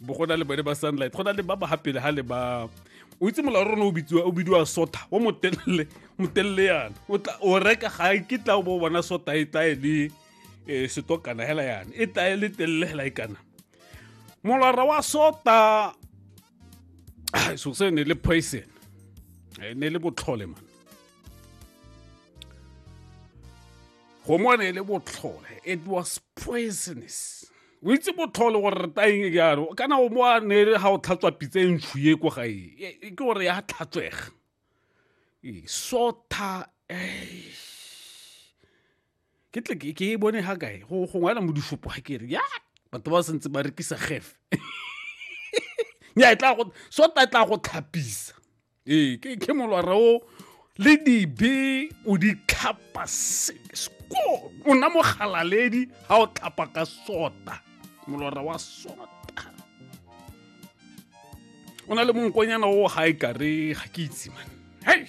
bo go na le bone ba sunlight go na le ba ba gapele ga le ba o itse molao rona o bitsiwa o bidiwa sota o motelele motelele yana o tla o reka ga ke tla o bo bona sota e tla e le eh, setokana hela yana e tla e le telele hela e kana molora wa sota so se ne le poison eh, ne le botlhole man go mo ne le botlhole it was poisonous o itse botlhole gore re taeng jalo kana o mo a nere ga o tlhatswa pitsa e ntshu ye ko gae e, e, ke gore ya tlhatswega e, sotha ke tle ke e bone ga kae go ngwana mo difopo ga kere ya batho ba sentse ba rekisa gefe nya e tla go sota e tla go tlhapisa ee ke ke molwara o le dibe o di tlhapa sko o na mogalaledi ga o tlhapa ka sota molwara wa sota o na le monkonyana o ga e kare ga ke itse man hei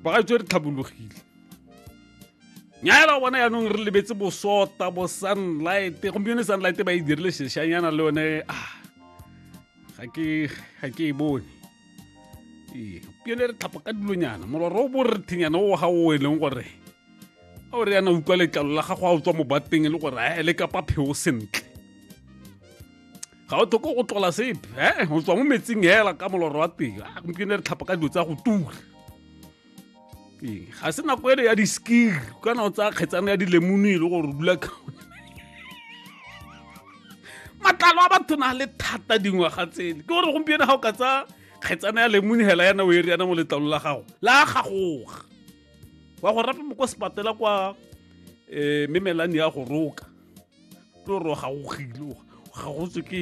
ba ga tswe re tlhabologile nyala bona yaanong re lebetse bosota bo sunlight gompieno sunlight ba e dirile seshanyana le yone ah ga ke ga ke e bone ee pione re tlhapa ka dilonyana molora o bo re thenyana o ga o e leng gore a o re yana utlwa letlalo la gago a o tswa mo bateng e le gore a ele kapa pheo sentle ga o tlhoko go tlola sepe e o tswa mo metsing hela ka molora wa teng a gompieno re tlhapa ka dilo tsa go tura ee, ga se nako ele ya diskir kana o tsaya kgetsana ya dilemone e le gore o dula matlalo a batho na le thata dingwaga tsele ke gore gompieno ga o ka tsaya kgetsana ya lemone hela yana o e riana mo letlalo la gago la gagoga wa go rapa mo kwa sepatela kwa um eh, memelane ya go roka tlo gore o gagogile o gagotswe ke